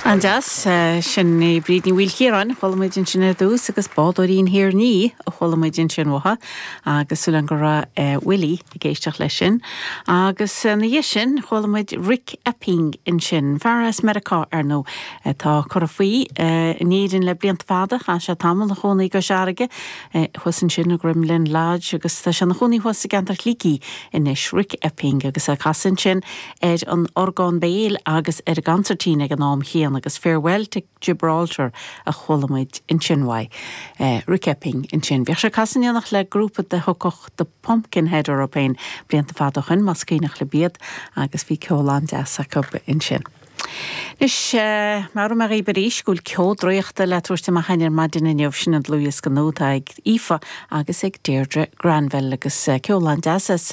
An-deas. Sin é Bríd Ní Mhaoilchiaráin. Chuala muid ansin ar dtús agus Bádóirín Thír Nia a chuala muid ansin uathu agus súil againn go raibh Willie ag éisteacht leis sin. Agus ina dhiaidh sin chuala muid Rick Epping ansin, fear as Meiriceá ar ndóigh. Tá curtha faoi in Éirinn le blianta fada, chaith sé tamall ina chónaí i gCois Fharraige. thuas ansin i gCromghlinn Lodge agus tá sé ina chónaí thuas i gceantar Shligigh anois. Rick Epping agus é ag casadh ansin ar an orgán béil agus ar an gcansairtín ag an am céanna agus Farewell to Gibraltar a chuala muid ansin uaidh. Rick Epping ansin. Bhíodh sé ag casadh in éineacht le grúpa dá dtugtaí The Pumpkinhead air féin blianta fada ó shin, más cuimhneach libh iad, agus bhí ceol an-deas acu ansin. Anois, meabhróidh mé dhaoib arís go bhfuil Ceo Draíochta le tabhairt amach againn ar maidin inniu, sin an dlúthdhiosca nua atá ag Aoife agus ag Deirdre Granville agus ceol an-deas as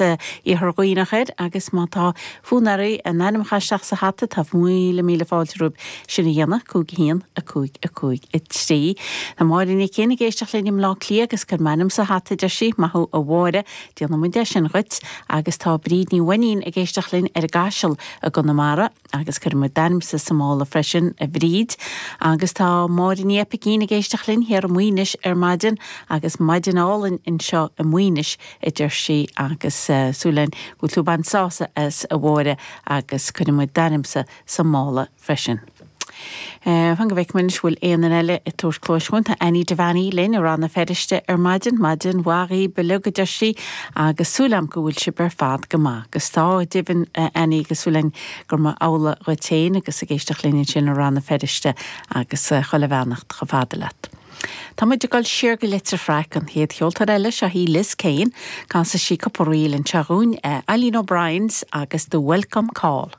Iarthar Duibhneach air agus má tá fonn oraibh bhur n-ainm a chaitheamh isteach sa hata, tá míle míle fáilte romhaibh sin a dhéanamh, 5 1 5 5 3. Tá Máire Uí Chuinn ag éisteacht linn i mBleá Cliath agus cuir m'ainm sa hata, a deir sí. Maith thú a Mháire. Déanfaidh muid é sin dhuit agus tá Bríd Ní Mhainnín ag éisteacht linn ar an gCaiseal i gConamara agus cuirfidh muid d'ainmse sa mála freisin, a Bhríd. Agus tá Máire Ní Oibicín ag éisteacht linn thiar i Maoinis ar maidin agus maidin álainn anseo i Maoinis, a deir sí, agus súil againn go bhfuil tú ag baint sásamh as, a Mháire, agus cuirfidh muid d'ainmse sa mála. freisin. Fan go bhfeicfidh muid an bhfuil aon duine eile ag tabhairt cluais dhúinn. Tá Annie Devaney linn i Rann na Feirste ar maidin. Maidin mhaith dhaoibh uilig a deir sí agus súil agam go bhfuil sibh ar fad go maith. Agus tá, go deimhin a Annie agus súil againn gurb amhlaidh dhuit féin agus ag éisteacht linn ansin i Rann na Feirste agus chuile bheannacht chomh fada leat. Tá muid ag dul siar go Leitir Fraic, an chéad cheoltóir eile, seo hí Liz Kane, casfaidh sí cúpla ríl anseo dhúinn, Eileen O'Briens agus The Welcome Call.